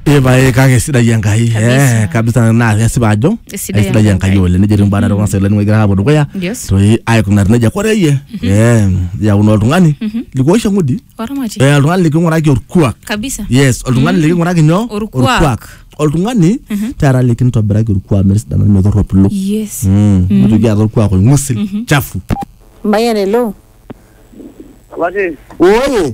Epae kake sidai Enkai Kabisa. eh, kabisa naa kesipa ajo Sidai aisidai Enkai. Enkai oleng nejo etii mbaa torrok oleng egira aapuo dukuya Yes. toi aikunari nejia kore iyie eh, yakuno oltung'ani likuoisho ng'udi Oramati. eh, oltung'ani liking'uraki orkuak Kabisa. yes oltung'ani liking'uraki nyoo Orkuak. oltung'ani taata likintobiraki orkuak metisidana metorropilo Yes. Mm, nitoki aata orkuak oing'usil chafu Mayian hello. Abaki, Oye,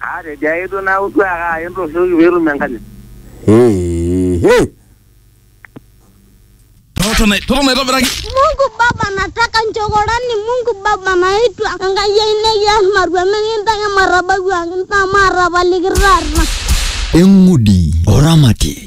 Atejo ake duo naaku duo ake aya entoshoki peetum enkanyit. Hei, hei. Totona totona aitobiraki. Mungu Baba nataka nchokorani Mungu Baba naitwa Enkai ai nekias marua mikintaki matabawuaki ntaa maatapaliki taata. Eng'udi oramati.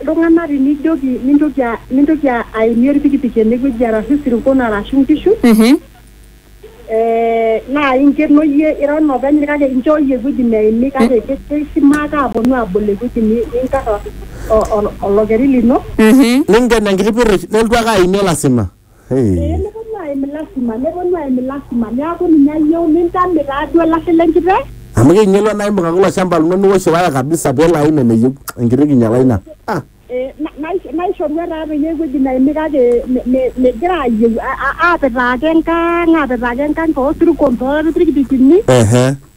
iltung'anak tinijoki mintoki a- mintoki a- aimie orpikipiki enewueji arashu isirkon arashu inkishu Mhm. eh, naa inkeno iyie ira olopeny kake inchooyie ewueji neimi kake ke- keisimaaka aponu abol ewueji ni- ninkar o- o- olokeri lino Mhm. Ningen enkiti pirrish, nelotu ake aimie lasima. Hey. Ee neponu aim lasima, neponu aim lasima. Neaku ninye ayieu nintame taaduo olashe le nkiteng. Amu keinyalua naa imbung'aki ilo shamba lino niwosh waya kabisa pelo aim eneyieu. Enkiti kinyala ina. Ah. Ee naishoru etaa peyie ewueji naimi kake megira aayieu. Aapetaa ake enkang, aapetaa ake enkang too sirkon, too lpikipikini. Ehe.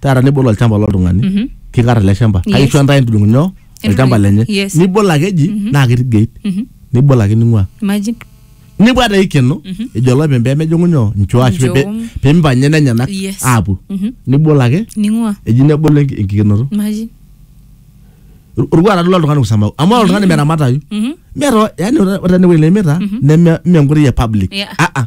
taata nibol olchamba loltung'ani Mhm. kikar ele shamba Yes. kaisho ntae entudung'u nyoo olchamba Entudung'u, lenye yes. nibol ake eji naa ketii gate Mhm. nibol ake ning'ua Imagine. nibwa taa ikeno ejo olopeny pemejing'u nyoo nchoo ashu Nchoo. pe- pemipang'ie nenyenak Yes. aapuo Mhm. nibol ake Ning'ua. eji nebolo enki- enkikenoto Imagine. Or- orkuak tadol oltung'ani kusamau amu ore oltung'ani meramatayu Mhm. meeta yani ore ore enewueji nemita neme mme enkoitoi e public Yeah. Ah, ah.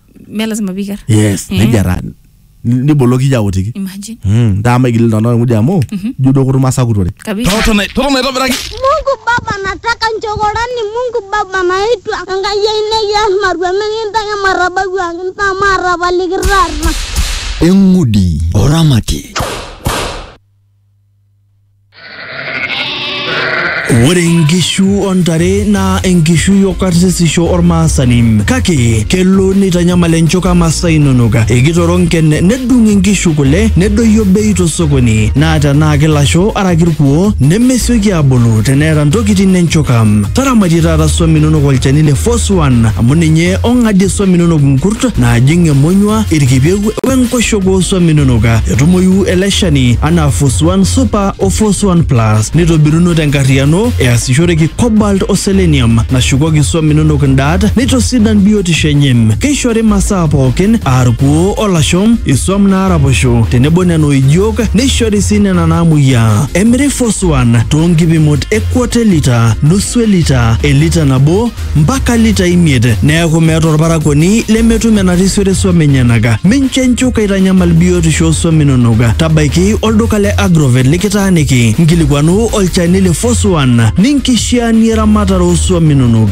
me lazima piker yes Mm. nejia taa N- niboloki iyie aotiki imagine Mm, ntaa maigil iltung'anak olng'udi amu ijo duo kutum asakutore kabisa totona totona aitobiraki Mungu Baba, nataka nchokorani. Mungu Baba, naitwa Enkai ai nekias marweme kintake matabawuaki ntaa maatapaliki taata. eng'udi oramati Ore nkishu o ntare naa enkishui o karsisisho olmaasani kake kelo neitanyamal enchuka masaa inonok. Ekitoronken nedung inkishu kule nedoyio bei tosokoni naa tenaa kilasho araki ilkuoo nemesioki aabulu teneeta ntokitin enchuka. Taramatie taata swam inonok olchani le Force One amu ninye ong'adie swam inonok nkurt naajing emonyua, ilkipieu wenkoshoke oo swam inonok. Etumoyu ele shani anaa Fos 1 Super o Fos 1 Plus neitobiruno tenkarriyiano easishoreki cobalt o selenium nashukoki swam inonok ndaat neitosidan biotisho enye. Keishori imasaa pookin aa irkuoo o lasho, iswam naaraposho tenebo nena oijiok neishori sii nena naamuoyiaa. Emiri Fos 1 too nkipimot e kwata e lita, nusu e lita, e lita nabo, mpaka litai imiet, neaku meeta olparakuoni lemetum enarisiore suam enyenaka. Mincho enchuka aitanyamal biotisho oo suam inonok. Tabaiki olduka le Agrovet likitaaniki, nkilikuanu olchani le Foswan ninkishiaanie eramatare oo suam inonok.